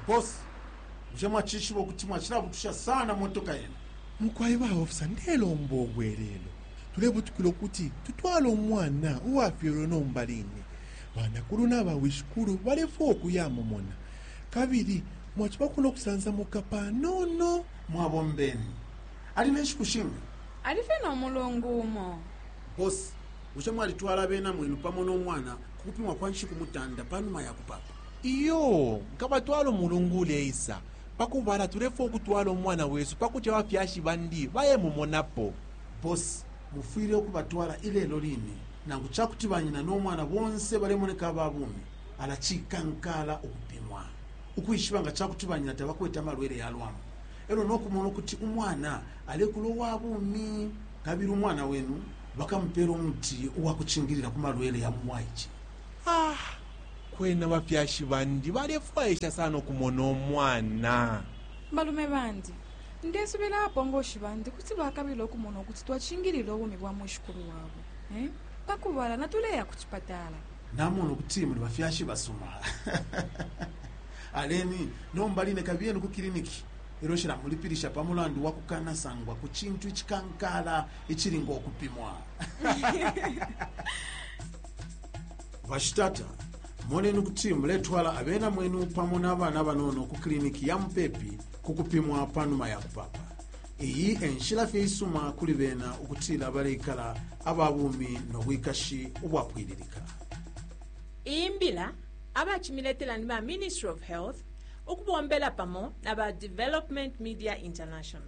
Boss, bushe mwacishiba ukuti mwacilabutusha sana motoka yenu? Mukwai ba officer, ndelomba ubwelelo. Tulebutukila ukuti tutwale umwana uwafyelwe nomba line. Banakulu na bawishikulu balefwaya ukuyamumona, kabili mwacibako no kusansamuka panono. Mwabombeni. Ali ne nshiku shinga? Ali fye no mulungu umo. Boss, Bushe mwalitwala abena mwenu pamo no mwana ku kupimwa kwa nshiku mutanda pa numa ya kupaapa? Iyo, nkabatwala umulungu uleisa. Pa kubala, tulefwaya ukutwala umwana wesu pa kuti abafyashi bandi bayemumonapo. Boss, mufwile ukubatwala ilelo line. Nangu ca kuti banyina no mwana bonse balemoneka aba bumi, ala cikankaala ukupimwa ukwishiba nga ca kuti banyina tabakwete amalwele ya lwambu e lyo no kumona ukuti umwana alekula uwa bumi. Kabili umwana wenu? Bakamupela umuti uwakucingilila ku malwele ya mu bwaice. Ah! Kwena bafyashi bandi balefwaisha sana ukumona umwana. Balume bandi, ndesubila abapongoshi bandi kuti bakabila ukumona ukuti twacingilila ubumi bwa mwishikulu wabo. Eh? Pa kubala, natuleya ku cipatala. Namona ukuti muli bafyashi basuma. Aleni, nomba line kabiyeni ku kiliniki. Elyo cilamulipilisha pa mulandu wakukanasangwa ku cintu icikankala icili ngo kupimwa bashitata moneni kuti muletwala abena mwenu pamo n'abana banono ku kiliniki ya mupepi ku kupimwa pa numa ya kupapa iyi enshila fye isuma kuli bena ukutila baleikala aba bumi no bwikashi ubwapwililika iyi mbila abacimiletela ni ba ministry of health ukubombela pamo na ba development media international